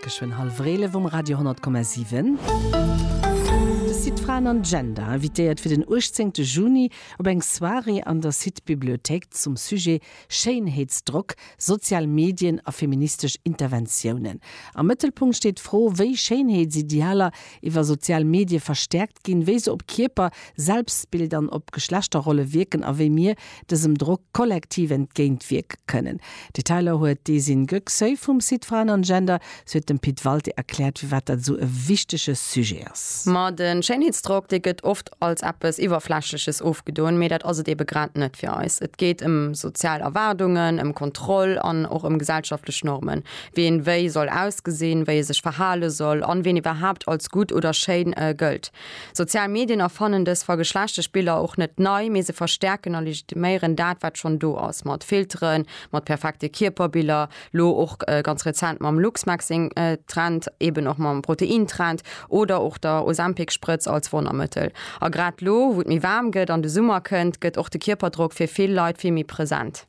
Geschwënn hallef Eelef um Radio 100,7. De Site Fraen an Gender invitéiert fir den 18 Juni op eng Soirée an der Site Bibliothéik zum Sujet Schéinheetsdrock, sozial Medien a feministesch Interventiounen. Am Mëttelpunkt steet d'Fro, wéi Schéinheetsidealer iwwer sozial Medie verstäerkt ginn, wéi se op Kierper, Selbstbild an op Geschlechterrolle wierken a wéi mir dësem Drock kollektiv entgéint wierke kënnen. Detailer huet d'Esin Göksoy vum Site Frauen und Gender. Si huet dem Pit Walté erkläert, firwat dat esou e wichtege Sujet ass. Ma de Schéinheetsdrock, dee gëtt oft als eppes Iwwerflächleches ofgedoen, mee dat ass et eebe grad net fir eis. Et geet ëm sozial Erwaardungen, ëm Kontroll an och ëm gesellschaftlech Normen, wéi een wéi soll ausgesinn, wéi ee sech verhale soll an ween iwwerhaapt als gutt oder schéin gëllt. Sozial Medien erfannen dës vergeschlechtegt Biller och net nei, mee se verstäerken a legitiméieren dat, wat schonn do ass, mat Filteren, mat perfekte Kierperbiller, lo och ganz rezent mam Luxmaxxing-Trend, eben och mam Protein-Trend oder och der Ozempic-Sprëtz als Wonnermëttel. A grad lo, wou et méi waarm gëtt an de Summer kënnt, gëtt och de Kierperdrock fir vill Leit vill méi present.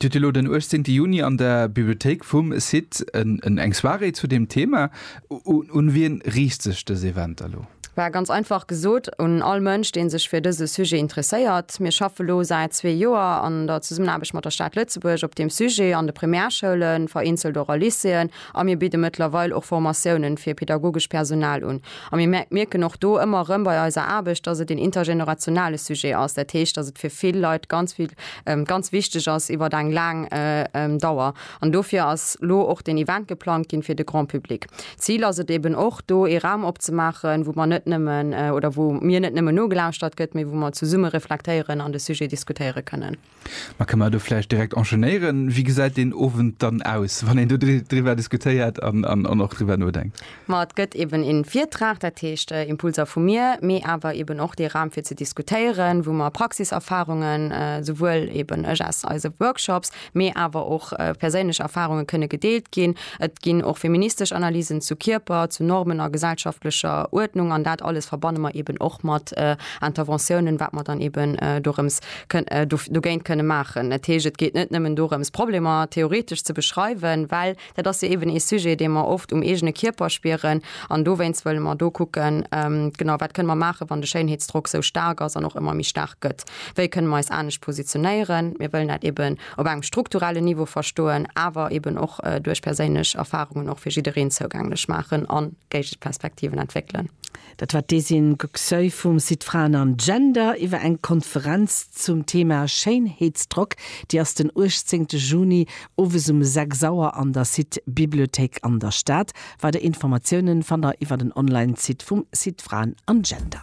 Dir hutt elo den 18 Juni an der Bibliothéik vum CITT eng Soirée zu deem Thema. Un wien riicht sech dës Event elo? Well ganz einfach gesot un all Mënsch, dee sech fir dëse Sujet interesséiert. Mir schaffe lo säit zwee Joer an der Zesummenaarbecht mat der Stad Lëtzebuerg op deem Sujet an de Primärschoulen, vereenzelt och a Lycéeën, A mir bidde mëttlerweil och Formatiounen fir pedagogesch Personal un. A mir mierken och do ëmmer erëm bei eiser Aarbecht, dass et een intergenerationale Sujet ass. Dat heescht, dass et fir vill Leit ganz vill, ganz wichteg ass iwwert eng laang Dauer. An dofir ass lo och deen Event geplangt ginn fir de Grand public. D'Zil ass et eben och, do ee Raum opzemaachen, wou mer net nëmmen, oder wou mir net nëmmen nogelauschtert gëtt, mee wou mer zesumme reflektéieren an de Sujet diskutéiere kënnen. Ma kënne mer do vläicht direkt enchaînéieren. Wéi gesäit deen Owend dann aus, wann een do driwwer diskutéiert an och driwwer nodenkt? Ma et gëtt eeben ee Virtrag, dat heescht Impulser vu mir, mee awer eeben och dee Raum fir ze diskutéieren, wou mer Praxiserfarungen, souwuel eeben ech aus eise Workshops, mee awer och perséinlech Erfarunge kënne gedeelt ginn. Et ginn och feministesch Analysen zu Kierper, zu Normen a gesellschaftlecher Uerdnung an dat alles verbanne mer eeben och mat Interventiounen, wat mer dann eeben dorëms dogéint kënne maachen. Dat heescht, et geet net nëmmen dorëms, Problemer theoretesch ze beschreiwen, well dat ass jo eeben ee Sujet, dee mer oft um eegene Kierper spieren. An dowéinst wëlle mer do kucken, genau, wat kënne mer maachen, wann de Schéinheetsdrock esou staark ass an och ëmmer méi staark gëtt. Wéi kënne mer eis anescht positionéieren? Mir wëllen dat eeben op engem strukturellen Niveau verstoen, awer eeben och duerch perséinlech Erfarungen och fir jiddereen zougänglech maachen a Géigeperspektiven entwéckelen. Dat war d'Esin Gcöy vum Site Fraen an Gender iwwer eng Konferenz zum Thema Schéinheetsdrock. Déi ass den 18 Juni owes um 6 Auer an der Site Bibliothéik an der Stad. Weider Informatiounen fannt der iwwer den Online-Site vum Site Fraen an Gender.